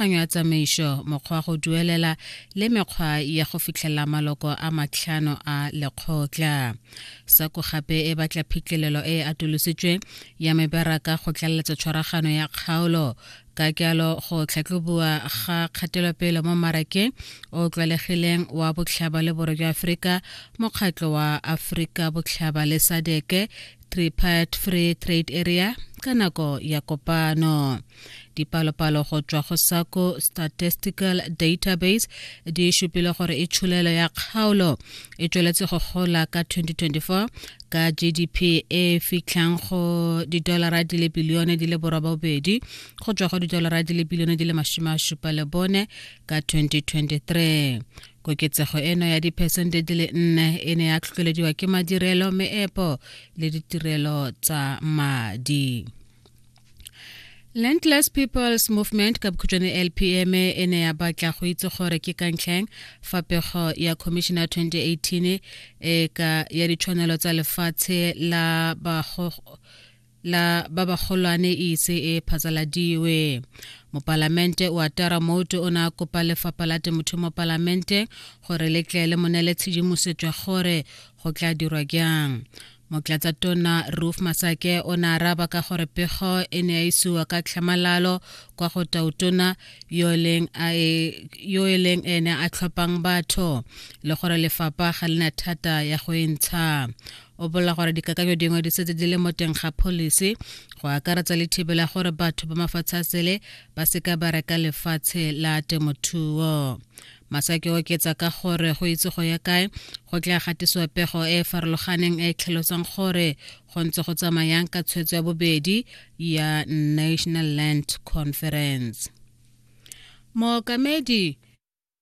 thulaganyo ya tsamaiso mokgwa wa go duelela le mekgwa ya go fitlhelela maloko a matlhano a lekgotla sako gape e batla phitlhelelo e e atolositsweng ya meberaka go tlaleletsa tshwaragano ya kgaolo ka jalo go tlhatlhobiwa ga kgatelopele mo marakeng o tlwalegileng wa botlhaba le boro jwa aforika mokgatlho wa aforika botlhaba le sadeke Tripartite Free Trade Area ka nako ya kopano dipalopalo go tswa go sako statistical database di šupile gore e tsholelo ya kgaolo e tsweletse go gola ka 2024 ka gdp e fitlhang go didolara di le bilione di le borobabedi go tswa go didolara di le bilione di le masome a supa le bone ka 2023 koketsego eno ya diphesente di le nne e ne ya tlhotlhelediwa ke madirelo meepo le ditirelo tsa madi landless peoples movement ka bokhutšwane lpm e ne ya batla go itse gore ke ka ntlheng fa pego ya commissioner 2018 e ka ya ditshwanelo tsa lefatshe la bago la ba bagolwane e ise e phatsaladiwe mopalamente o atara moto o ne a kopa lefapha la temotho mo palamente gore le tle le monele tshedimosetso ya gore go tla dirwa jang motlatsa tona roof masake o ne a raba ka gore pego e ne ya isiwa ka tlhamalalo kwa go tautona yo e, e leng ene a tlhophang batho le gore lefapha ga le na thata ya go e ntsha o bolela gore dikakanyo dingwe di setse di le mo teng ga pholisi go akaretsa le thibela gore batho ba mafatshe a sele ba seka ba reka lefatshe la temothuo masake oketsa ka gore go itse go ya kae go tla gatisiwa pego e e farologaneng e e tlhalosang gore go ntse go tsamayang ka tshwetso ya bobedi ya national land conference mookamedi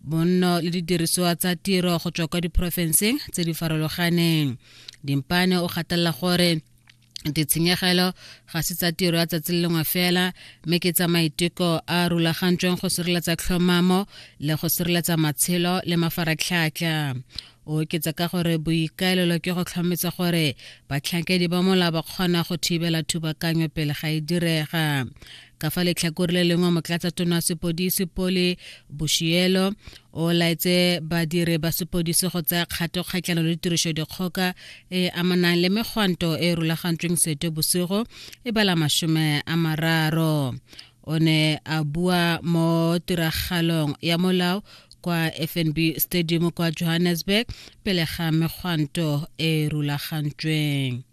bonno le didirisiwa tsa tiro go tswa kwa diporofenseng tse di farologaneng dimpane o gatelela gore ditshenyegelo ga se tsa tiro ya tsatsi lengwe fela mme ke tsa maiteko a rulagantsweng go sireletsa tlhomamo le go sireletsa matshelo le mafaratlhatlha o oketsa ka gore boikaelelo ke go tlhometsa gore batlhankedi ba mola ba kgona go thibela thubakanyo pele ga e direga ka fa letlhakore le lengwe motlatsatona wa sepodisi pole boshielo o laetse badiri ba sepodisi go tsaya kgato kgatlhanong le tiriso dikgoka e amanang le megwanto e e rulagantsweng seto bosigo e bala masome a mararo o ne a bua mo tiragalong ya molao kwa fnb stadium kwa johannesburg pele ga megwanto e rulagantsweng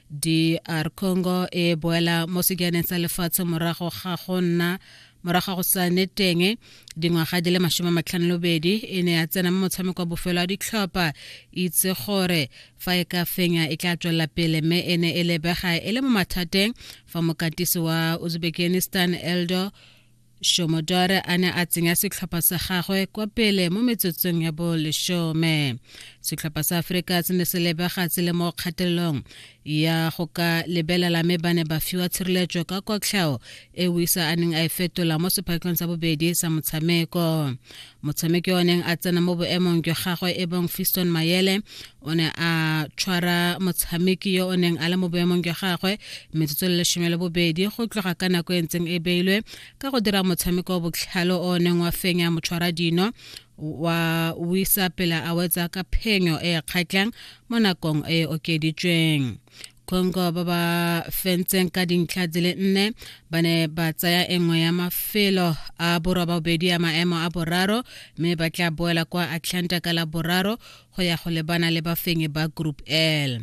DR Congo e boela mo sejaneng sa lefatshe morago ga go nna morago ga go sa ne teng dingwaga di le masome a matlhano lobedi e ne ya tsena mo motshameko wa bofelo wa ditlhopha itse gore fa e ka fenya e tla tswelela pele mme e ne e lebega e le mo mathateng fa mokatisi wa uzbekinistan eldo Shomodore a ne a tsenya setlhopha sa gagwe kwa pele mo metsotsong ya bo leshome. Setlhopha sa Aforika se ne se lebega tse le mo kgatelelong ya go ka lebelela mme ba ne ba fiwa tshireletso ka kotlhao e Wisa a neng a e fetola mo sephakong sa bobedi sa motshameko. motshameki o neng a tsena mo boemong jwa gagwe e bong fiston mayele o ne a tshwara motshameki yo o neng a le mo boemong jwa gagwe metsotso le lesome le bobedi go tloga ka nako e ntseng e beilwe ka go dira motshameko wa botlhalo o neng wa fenya motshwara dino wa wisa pele a wetsa ka phenyo e kgatlhang mo nakong e okeditsweng congo ba ba fentseng ka dintlha di le nne ba ne ba tsaya e nngwe ya mafelo a borwa bobedi ya maemo a boraro mme ba tla boela kwa atlanta ka la boraro go ya go lebana le bafenyi ba group l